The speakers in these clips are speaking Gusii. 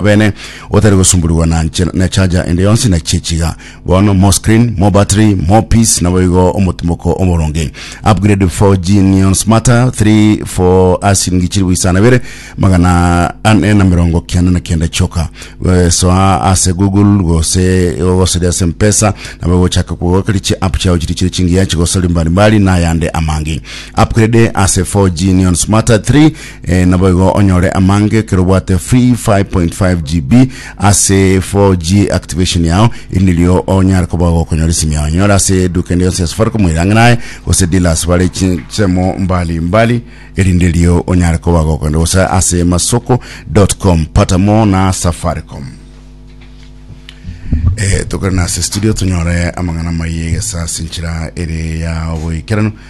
bene otari gosumburigwa na nche- na echaja ende yonsi na chiechiga bono more screen more battery more peace naboigo omotimoko omoronge upgrade 4G neon smarter 3 for asiringi chilifu isano ibere magana ane na mirongo kianda na kianda choka Eh, soa ase google gose gogosoria ase mpesa nabo gochaka kogokeri chi app chao chiri chiri chingiya chigosori mbalimbali na yande amange upgrade ase 4G neon smarter 3 Ee, naboigo onyore amange ekero obwate free 5.5 GB ase 4G activation yao, eri nirio onyare koba gokonyora esimi yao. Nyora ase eduka ende yonsi ya Safaricom erang'inae gose dealers bare chinsemo mbali mbali, eri ndirio onyare koba gokonyora gose ase masoko.com. Pata more na Safaricom. Eh, tokore nase studio tonyore amang'ana maiye gesa sinchira ere ya oboikeranu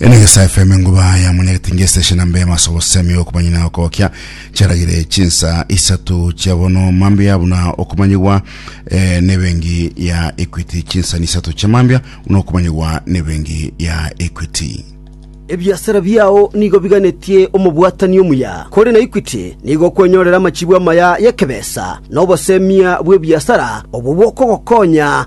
Ene gesa FM enguba ya munyagete ngesta shina mbe masobo semi yo kumanya na okokia charagire chinsa isatu chabono mambia buna okumanyigwa eh, ne bengi ya Equity chinsa ni isatu cha mambia buna okumanyigwa ne bengi ya Equity ebiasara biao nigo biganetie omobwatani omuya kore na Equity nigo okwenyorera amachibu amaya y'ekebesa na obosemia bw'ebiasara obwo bokogokonya